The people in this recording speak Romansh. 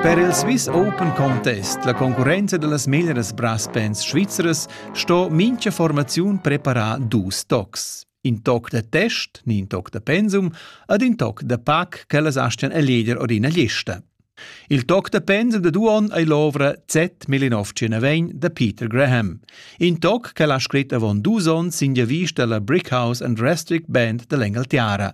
Per il Swiss Open Contest, la concurrenza da las meglras brass bands svizzeras, sto mincha formaziun preparar dus tocs. In toc da test, ni in toc da pensum, ed in toc da pac ch'ellas astian eleger or ina lista. Il toc da pensum da due onn ei l'ovra Z Melinovci da Peter Graham. In toc che l'ha scrit avon dus onns sin vista alla Brickhouse and Restrict Band dall'Engaltiara.